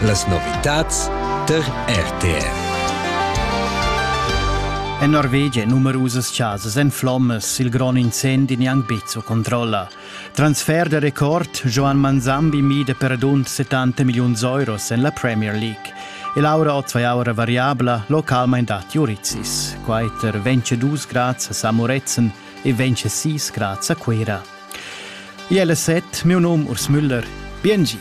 Las novitads tar RTR. En Norvegia numerusas chasas en flommas, il grond incendi neanc bezzo controlla. Transfer de record, Joan Manzambi mida per dunt 70 milliuns euros en la Premier League. E Laura ot zwei aura variabla localmein dat Juritzis. Quaiter vence dus grads a Samoretzen e vence sis grads a Quera. Iela set, miu num Urs Müller. Biengi.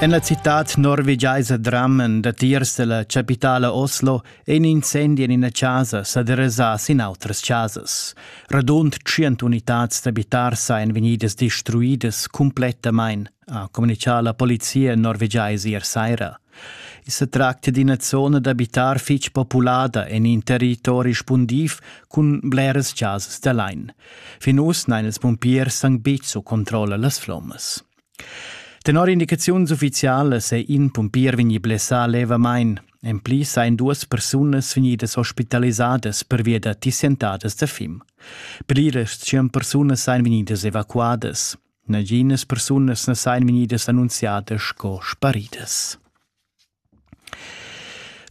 En la citad norvegiaisa Drammen, datiers della capitala Oslo, è in incendi en ina casa sa derasà sin outras chasas. Radund 100 unitads d'abitars ein vegnidas destruidas cumplettamain. ha communicà la polizia norvegiais ier saira. I sa tracta d'ina zona d'abitar fitg populada en in territori spundiv cun bleras chasas da lain. Fin uss n'han ils pumpiers anc betg su controlla las flommas. Tenor indicaziuns uffizialas è in pumpier vegnì blessà levamain. En pli sain duas persunas vegnidas ospitalisadas pervia da tissientadas da fim. Per ir tschient persunas sain vegnidas evacuadas. Naginas persunas na sajan vegnidas annunziadas sco sparidas.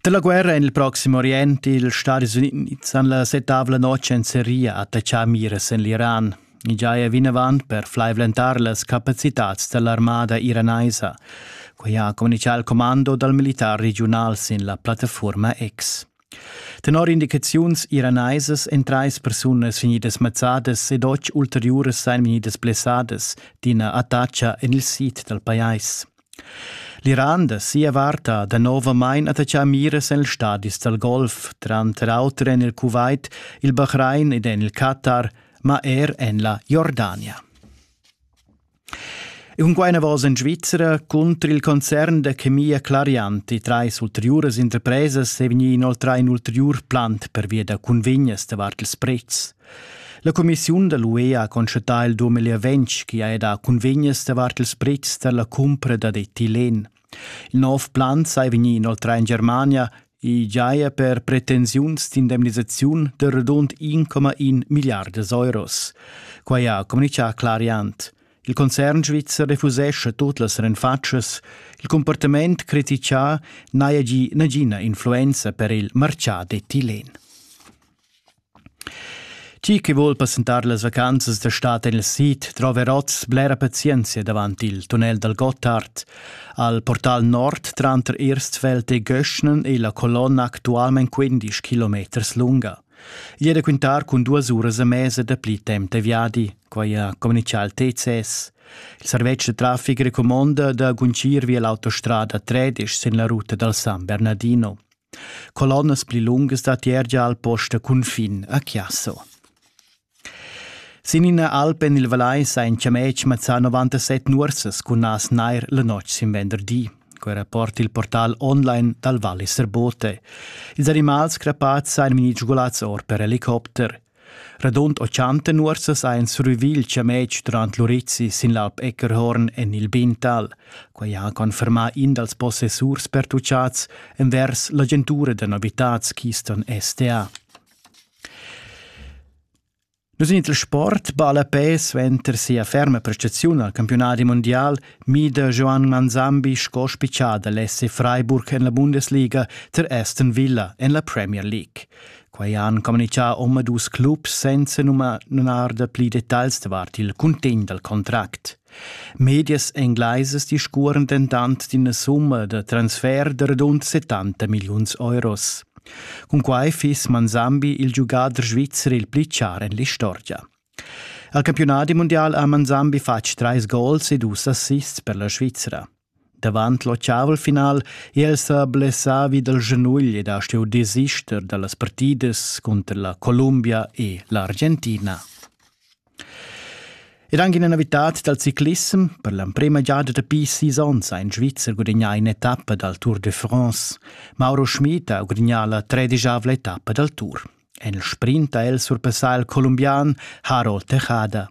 Da la guerra en il Proxim Orient ils Stadis Unids han la setavla notg en Seria attaccà miras en l'Iran. I giaja vinavant per flaivlentar las capacitads da l'armada iranaisa. Quai ha communichà il commando dal militar regiunal sin la plattaforma X. Tenor indicaziuns iraneisas èn trais persunas vegnidas mazzadas ed otg ulteriuras sain vegnidas blessadas d'ina attacha en il sid dal pajais. L'Iran da sia vart ha danovamain attaccà miras en ils stadis dal Golf, tranter auter en il Kuwait, il Bahrain ed en il Qatar, ma er en la Jordania. Cunquai enavos en Svizra cunter il concern da chemia Clarianti trais ulteriuras interpresas è vegnì inoltrà in ulteriur plant pervia da cunvegnas davart ils prezs. La cumissiun da l'UE ha constatà il 2020 che ha dà cunvegnas davart ils prezs da la cumpra dad etilен. Il nov plan sai vegnir inoltrà en Germania e giaja per pretensiuns d'indemnisaziun da radund 1,1 milliardas euros. Quai ha communitgà Clariant. Il concern svizzer refusescha tut las renfatschas. Il comportament critichà n'haja gì nagina influenza per il martgà d'etilен. Chi chi voul passentar las vacanzas d'estat en il sid trova er oz blera pazienzia davant il tunnel dal Gottard. Al portal nord tranter Irstfeld e Göschnen è la colonna actualment 15 kilometers lunga. Igl è da quintar cun duas uras e mesa dapli temp da viadi, quai ha communitgà il TCS. Il servetsch da traffic recumonda da guncir via l'autostrada 13 sin la ruta dal San Bernardino. Colonnas pli lungas da tier gia al post da cunfin a Chiasso. Sin ina alp en il Valais ein chametg mazzà 97 nuorsas cun nas nair la notg sin venderdi. Quei rapport il portal online dal Vallis Bote. Ils animals crapats ein vegni sgulats or per helicopter. Radund 80 nuorsas ha ins ruvì il chametg durant l'urizi sin l'Alp Eckerhorn en il Bintal. Quai ha confermà in dals possessurs pertuchads envers l'agentura da novitads Keystone STA. Nus in il sport balla pe suenter sia ferma prestaziun al campionat mondial mida Joan Manzambi sco spiccià da l'SC Freiburg en la Bundesliga ter Aston Villa en la Premier League. Quei han communicà omadus clubs senza nunar da pli detagls davart il cuntegn dal contract. Medias englaisas discuoran dentant d'ina summa da transfer da radund 70 milliuns euros. Cun quai fiss Manzambi il giugader svizzer il pli char en l'istorgia. Al campionat mundial ha Manzambi fatg trais gols e dus assists per la Svizra. Davant l'ochavel final è el sa blessà vi dal schanugl ed ha stuì desister da las partidas cunter la Columbia e l'Argentina. Ed anche in avitat dal ciclissem, per l'emprima giada dapi sis onns ha in Svizzer gudagnà in'etappa dal Tour de France. Mauro Schmid ha gudagnà la tredisavla etappa dal Tour. En il sprint ha el surpassà il colombian Harold Tejada.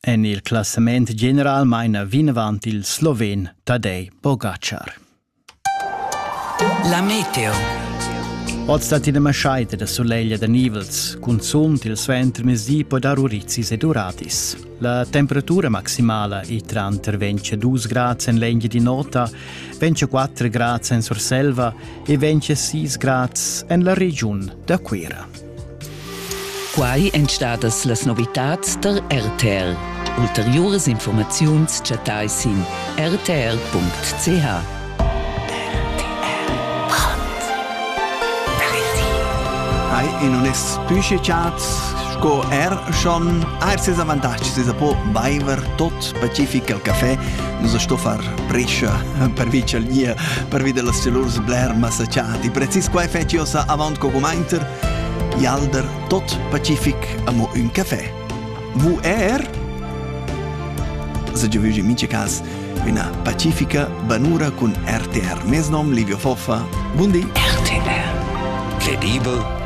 En il classament general maina vinavant il sloven Tadej Pogačar. La meteo. Oz dat ina maschaita da soleglia da nivels, cunzunt il suenter mezdi po dar urizis e duratis. La temperatura maximala è tranter 22 grad en l'engia di nota, 24 grad en Surselva e 26 grad en la regiun da Cuira. Quai èn stadas las novitads tar RTL. Ulteriuras informaziuns chattai sin rtr.ch. in onest Püschechat sco er schon er ses avantatgs, ses po baiver tot pacific al café, nus sto far briscia pervi ch'el gnir pervi dellas celurs bler massachati. Precis quai fetsch io sa avant co cumainter. Ialder tot pacific amo ün café. Vous er? Se je vugi mince cas una pacifica banura cun RTR. Mes nom Livio Foffa. Bundi. RTR. Credibel